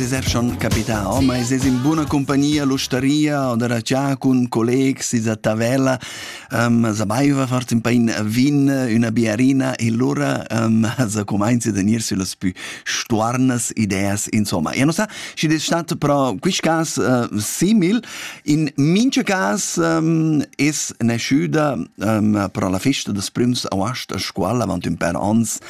es er schon capità, oh, ma es in buona compagnia l'ustaria o da già cun collegs is a Tavella, um, sapeva farsi un pain vin, una biarina e lura um, sa comincia a tenir sulle più stuarnas ideas, insomma. E non sa, si è stato però quest cas uh, simil, in mince cas um, es nasciuta um, però la festa des prüms auast a scuola avanti un per ans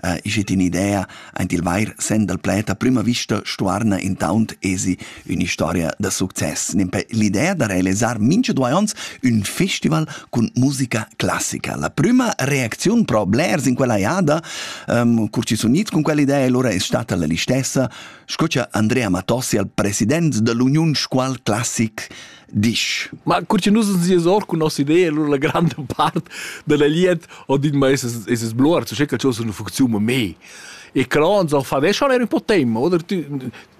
Uh, ich het in idea, ein il vair sen dal pleta prima vista stuarna intaunt esi un'istoria da success. Nempe l'idea da realisar mincha due ons un festival cun musica classica. La prima reacziun pro blers in quella jada, um, cur ci sun its cun quell'idea e lura è stata la listessa, scucha Andrea Matossi al president dell'Union Scual Classic disch. Ma cur che nus sies or cun nossa idea, allora la granda part della liet ho dit ma es es blor, so che c'ho una funzione me. E cron so fa des schon er un po' tempo, oder tu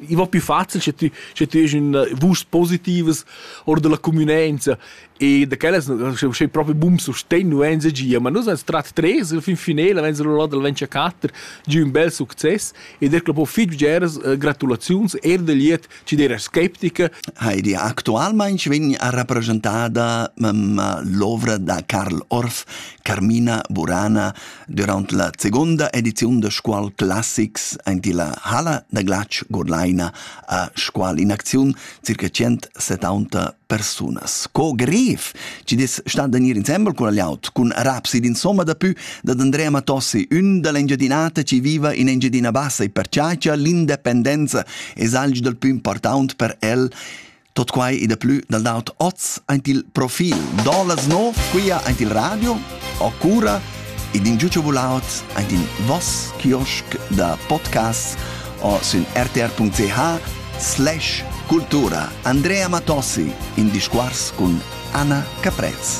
i va più facile se tu se tu es in vusch positives or della convenienza e da quellas c'è proprio boom so stenu enza gia, ma nus ans trat tres il fin finale wenn so là del 24 giù un bel succes e der que po fitg geras gratulaziuns er del liet Ti era sceptica? Heidi, actualmain vegn a rappresentada l'ovra da Karl Orff, Carmina Burana, durant la seconda ediziun de Scuol Classics aint la Halla da Glatsch Godleina a Scuol in acziun circa 170 persunas. Co grev chi dess stand in ir insembel cun l'aut, cun rapsid insomma dapü dad Andrea Matossi, ün da l'Engiadinata chi viva in Engiadina Bassa e perciagia l'independenza e salg dal pü important per el Tot quai e da plü dal daut oz aint il profil. Do las nov quia aint il radio o cura ed in giutscha volaut ein in voss kiosk da podcasts o sün rtr.ch slash cultura Andrea Matossi in discours cun Anna Caprez.